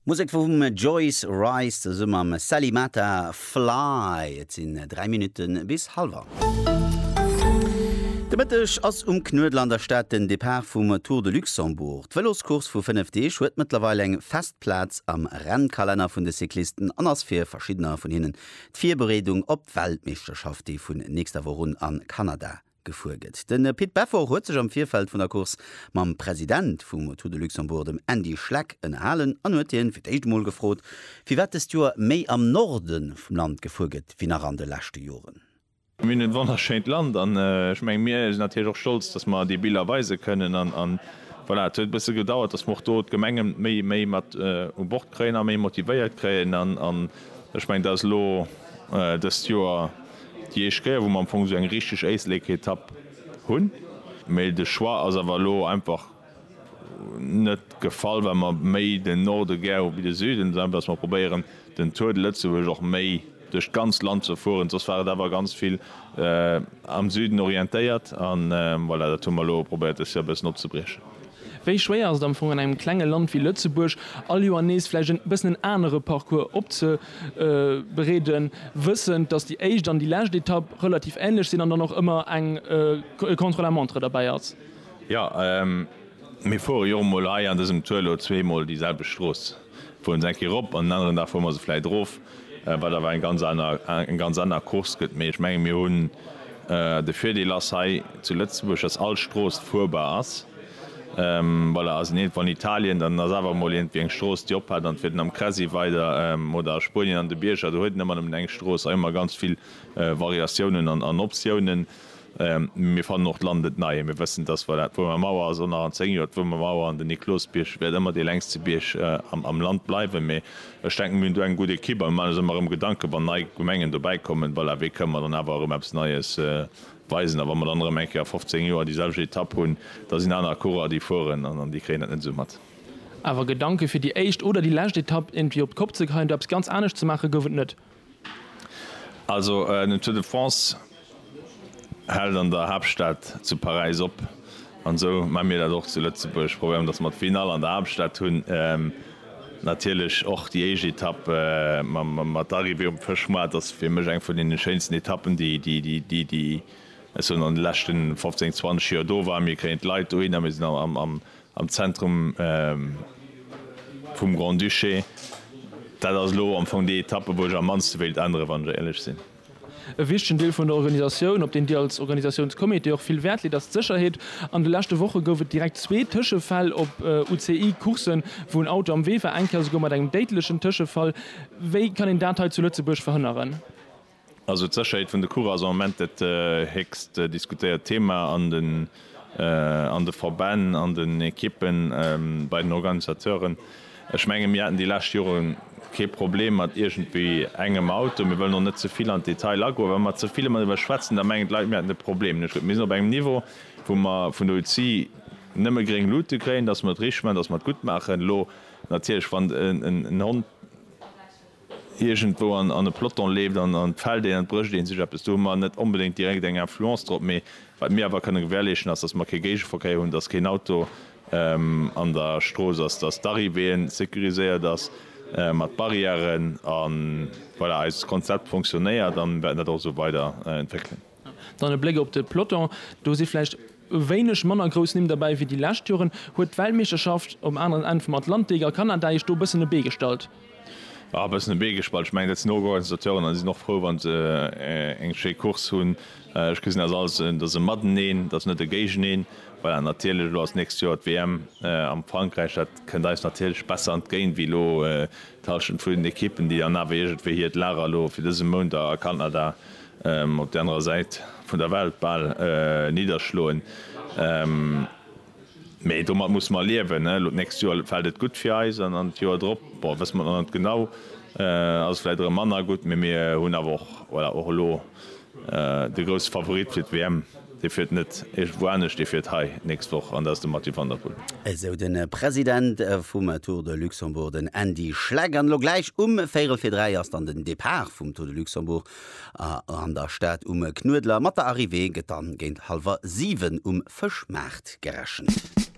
Musek vum Joyce Wright zesumme mam Sally Mata, Fly. Et sinn 3 Minutte bis hallwer. De Mëtteg ass um Knuedler an der Stad den Depart vum Tour de Luxembourg. D'Vëloscourse vu 5 Deeg huet mëttlerweil eng fest Plaz am Rennkalenner vun de Cyclisten an ass fir verschiddener vun hinnen d'Virbereedung op d'Weltmeeschterschaft, déi vun nächster Woch un a Kanada gefuer gëtt. De Pit Beffort huet sech am Virfeld vun der Course mam President vu Moto de Luxembourg, dem Andy Schleck, ënnerhalen an huet hien fir d'éischt emol gefrot, firwat dëst Joer méi am Norde vum Land gefuer gëtt wéi nach an de leschte Joren. Mir hunn e wonnerschéint Land an ech mengen, mir sinn natierlech och stolz, dass mer déi Biller weise kënnen an voilà. Et huet e bësse gedauert, dass mer och do d'Gemengen méi, méi mat u Bord kréien a méi motivéiert kréien an ech mengen, dat ass elo dëst Joer. Déi éischt Kéier wou mer am Fong sou eng richteg Éislécketapp hunn, mee de Choix ass awer elo einfach net gefall well mer méi den Norde gär hu wéi de Süden, esou einfach dass mer probéieren den Tour de Lëtzebuerg och méi duerch d'ganz Land ze fueren, soss war et awer ganz vill am Süden orientéiert an voilà, dat hu mer elo probéiert des Joer e bëssen opzebriechen. Wéi schwéier ass et am Fong an engem klenge Land wéi Lëtzebuerg, all Joer nees vläicht e bëssen en anere Parcours opzebereeden, wëssend, datt déi éischt an déi lescht Etapp relativ änlech sinn an dann och ëmmer eng Contre-la-montre derbäi ass? Jo, mir fuere jo emol hei an dësem Tour elo zweemol déi selwecht Strooss. Fueren se eng Kéier erop an den aneren Dag fuere mer se vläit erof, wat awer eng ganz aner, eng ganz aner Course gëtt. Mee ech menge mir hunn, de Virdeel ass hei zu Lëtzebuerg, datt all Strooss fuerbar ass. Voilà, ass een iergendwou an Italien, dann ass awer emol iergendwéi eng Strooss, déi ophat, dann fiert een am Cressy weider oder a Spuenien an de Bierger, do huet een ëmmer nëmmen eng Strooss a ëmmer ganz vill Variatiounen an Optiounen. Mir fannen och d'Land net nei. Mir wëssen, dass voilà, d'Wuermer Mauer ass och nach an zéng Joer d'Wuermer Mauer an den Niklosbierg wäert ëmmer dee längste Bierg am Land bleiwen. Mee ech denken, mir hunn do eng gutt Ekipp a mir maachen eis ëmmer erëm Gedanken, wann nei Gemengen dobäi kommen, voilà, wéi kënnen mer dann awer erëm eppes Neies weisen. A wa mer dann erëm eng Kéier a 15 Joer déi selwecht Etapp hunn, da sinn aner Coureurer, déi fueren an déi kréien dat net esou mat. Awer Gedanke fir déi éischt oder déi lescht Etapp iergendwéi op d'Kopp ze kreien, do eppes ganz anescht ze maachen, gouf et net. Also den Tour de France hält an der Haaptstad zu Paräis op an esou maache mir dat och zu Lëtzebuerg, probéieren datt mer d'Finall an der Haaptstad hunn, natierlech och déi éischt Etapp mat Arrivée um Fëschmoart ass fir mech eng vun deene schéinsten Etappen déi ech sou an de leschten 15, 20 Joer do war. Mir kréien d'Leit dohinner, mir sinn am Am Zentrum vum Grand-Duché. Dat ass elo am Fong déi Etappe, wou ech am mannste wéilt änneren, wann ech éierlech sinn. E wichtegen Deel vun der Organisatioun, op deen Dir als Organisatiounscomité och vill Wäert leet, ass d'Sécherheet. An de leschte Woche gouf et direkt zwee Tëschefäll op UCI-Courssen, wou en Auto am Wee war, eng Kéier esouguer mat engem déidlechen Tëschefall. Wéi kann een dat hei zu Lëtzebuerg verhënneren? Also d'Sécherheet vun de Course ass am Moment dat héchst diskutéiert Thema an de Verbänn, an den Ekippen, bei den Organisateuren. Ech menge mir haten déi lescht Jore kee Problem mat iergendwéi engem Auto. Mir wëllen och net ze vill an d'Detail agoen. Wa mer ze vill ëmmer driwwer schwätzen, da mengen d'Leit mir hätten e Problem. Ech gleef mir sinn op engem Niveau wou mer vun der UCI nëmme gréng Lute kréien, datt mer et richteg maachen, datt mer et gutt maachen. Elo natierlech wann en Hond. iergendwou an e Ploton leeft an d'fällt een an et brécht ee sech eppes, do hu mer net onbedéngt direkt eng Influence drop. Mee wat mir awer kënne gewährleeschen ass, datt mer kee Géigeverkéier hunn, datt keen Auto an der Strooss ass, datt d'Arrivée sécuriséiert ass mat Barrièren a voilà eist Konzept fonctionnéiert an wäerten dat och esou weider entwéckelen. Dann e Bléck op de Peloton, do si vläicht e wéineg manner grouss Nimm derbäi wéi déi lescht Joren. Huet d'Weltmeeschterschaft um aneren Enn vum Atlantik a Kanada Iech do e bëssen e Bee gestallt? E bëssen e Bee gestallt, ech mengen dat sinn Organisateuren an déi sinn och frou wann se eng schéi Course hunn. Ech gesinn dat als en, dat ass e Mateneen, dat ass net e Géigeneen. Voilà, natierlech elo ass d'nächst Joer d'WM am Frankräich, dat kënnt eis natierlech besser entgéint wéi elo d'Hallschent vun den Ekippen, déi dann awer iergendwéi hiert Lager elo fir dëse Mount a Kanada op der anerer Säit vun der Welt bal nidderschloen, mä domat musse mer liewen. Elo d'nächst Joer fält et gutt fir eis an an d'Joer drop, bon, wësse mer nach net genau, ass et vläicht erëm manner gutt, mä mir hunn awer och, voilà, och elo de grousse Favorit fir d'WM, dee fiert net iergendwou anescht, dee fiert hei d'nächst Woch an dat ass de Mathieu van der Poel. Esou de President vum Tour de Luxembourg, den Andy Schleck. An elo gläich um véierel vir dräi ass dann den Depart vum Tour de Luxembourg A an der Stad um Knuedler mat der Arrivée gëtt dann géint hallwer 7 um Fëschmaart gerechent.